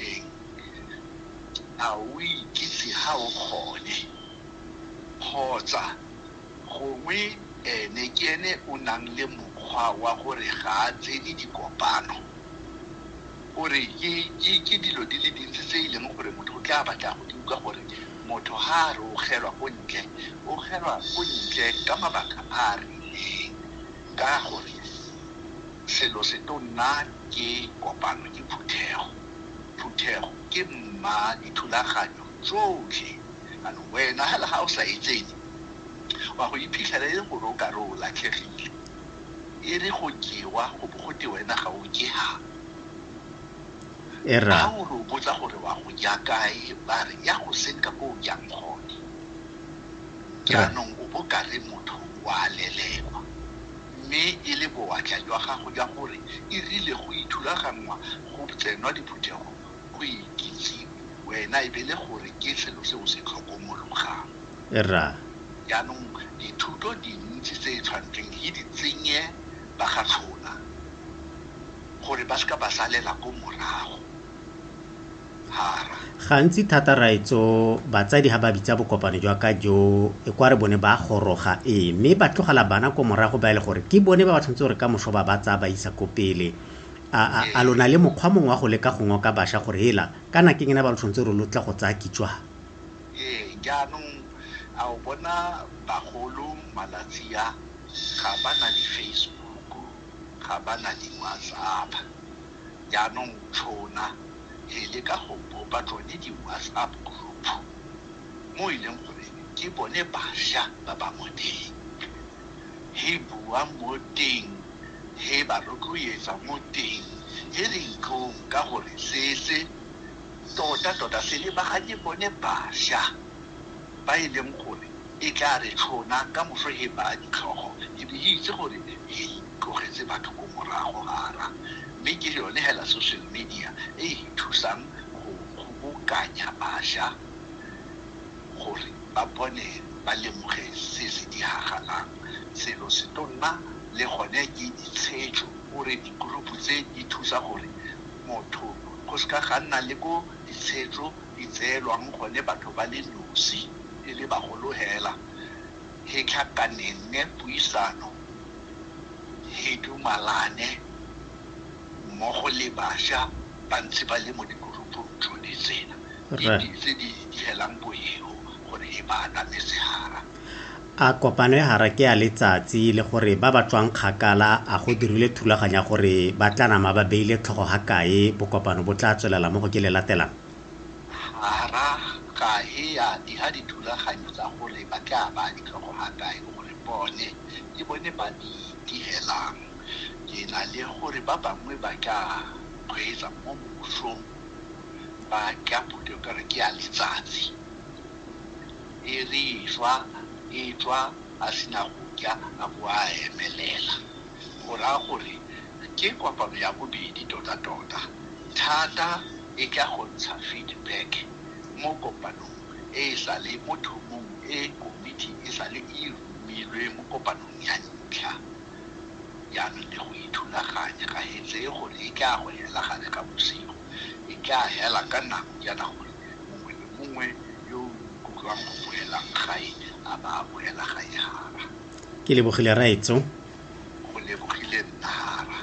teng. A o ikitse ha o gone? Kgotsa gongwe ene ke ene o nang le mokgwa wa gore ga a tsene dikopano? O re ke dilo di le dintsi tse e leng gore motho o tla batla go di utlwa gore motho ha a re o gelwa ko ntle, o gelwa ko ntle ka mabaka a a rileng. Ka gore selo se tonna ke kopano, ke phuthego. Phuthego ke mma dithulaganyo tsotlhe. Jaanong wena fela ga o sa e tsenye, wa go iphitlhela e le gore o kare o latlhegile. E re go jewa go bo go te wena ga o je jang. Ga o re o botsa gore wa go ja kae, ba re ya go senka ko o jang gone. Jaanong o bo ka re motho o a lelekwa, mme e le bowatla jwa gago jwa gore e rile go ithulaganngwa go tsenwa diphuthego go ikitsiwe wena e be le gore ke selo se o se tlhokomologang. Rra. Jaanong dithuto dintsi tse e tshwantseng e di tsenye ba ga Tlhola gore ba se ka ba salela ko morago. Gantsi thata raetso batsadi ha ba bitsa bokopano jwa ka jo e kwa re bone ba goroga ee mme ba tlogela bana ko morago ba e le gore ke bone ba ba tshwanetse gore ka moso ba ba tsaya ba isa ko pele a a a lona le mokgwa mongwe wa go leka go ngoka basha gore hela kana ke ngena ba lo tshwanetse re lo tla go tsaya kitswa ee jaanong a o bona bagolo malatsi a ga ba na di-facebook ga ba na di-whatsapp Jaanong tšhona he le ka go bopa tsone di-WhatsApp group mo e leng gore ke bone basha ba ba mo teng, he bua mo teng, he ba rotloetsa mo teng, he re itlong ka gore se se tota-tota se lebaganye bone basha ba e leng gore e tla re tšhona ka moso he baya ditlhogo e be e itse gore he tlogetse batho ko morago a ra. Mme ke yone hela social media e e re thusang go kgobokanya bašwa gore ba bone ba lemoge se se diragalang. Selo se tlo nna le gone ke ditshejo or-e di-group-u tse di thusa gore motho go se ka ga nna le ko ditshejo di tseelwang gone batho ba le nosi e le bagolo hela. He tlhakaneng puisano he dumalane mmogo le basha ba ntse ba le mo dikurupung tshone tsena tse di helang boheo gore he ba aname sehara a kopano ya hara ke ya letsatsi le gore ba ba tswang kgakala a go dirile thulaganya gore ba tla nama ba beile tlhogo ga kae bokopano bo tla tswelela mo go ke le latelang hara ga he ya di ha dithulaganyo tsa gore ba tla ba ditlhogo ga kae gore bone ke bone ba di direlang. Ke na le gore ba bangwe ba ka kgweetsa mo mosong ba ka phuthego ka gore ke ya letsatsi, e re e swa e tswa a sena go ja a bo a emelela. Go raya gore ke kopano ya bobedi tota-tota, thata e ka go ntsha feedback mo kopanong e e sale mo thomong e komiti e sale e Milwe mo kopanong ya ntlha ya me le go ithulaganya, ga e tseye gore e tlaa go hela gare ga bosigo. E tlaa hela ka nako jaana gore mongwe le mongwe yo o ikutlwang go boelang gae a ba a boela gae hara. Ke lebogile Raetso. Go lebogile Nnahara.